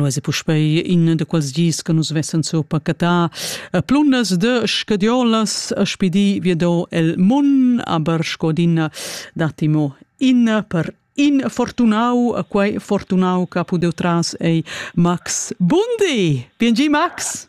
Lo es puspei in da quels dis che nus vessen sur pacatà plunas de scadiolas a spidi viedò el mun, aber scodin datimo in per in fortunau a quei fortunau che ha pudeu tras ei Max Bundi. Bien gi Max.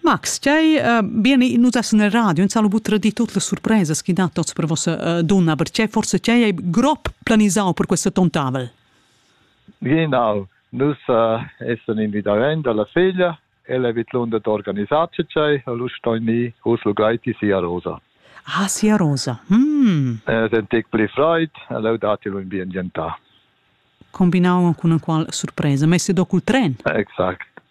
Max, tgei uh, bene, nus essen el radio, ins ha lu buca tradiu tutte le surprese che dat tots per vossa uh, donna, aber tgei forse tgei hai grob planisau per questo tontavel? Genau, nus uh, essen invidaven dalla figlia, ella vet l'onda d'organisar tgei, lu stoi ni us lu gleiti sia rosa. Ah, sia rosa. Mm. Eh, È tec pli freud, allora datelo in bien gientà. Combinau con una qual sorpresa, messi dopo il tren. Exakt.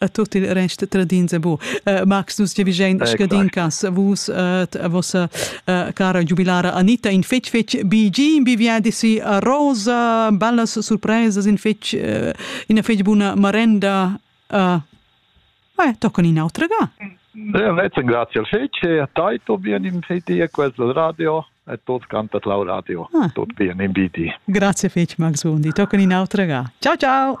a tot il rest tradins e bu. Uh, Max, nus giavigein scadin cas vus uh, a vossa uh, cara giubilara Anita in fetg fetg BG in biviadi si a Rosa, bellas surpresas in fetg uh, ina fetg buna marenda uh, eh, toccon in autra ga. Rece grazie al fetg e a tai to bien in fedi e questo radio e tot canta clau radio. Ah. Tot bien in BD. Grazie fetg Max Bondi, toccon in autra ga. Ciao ciao.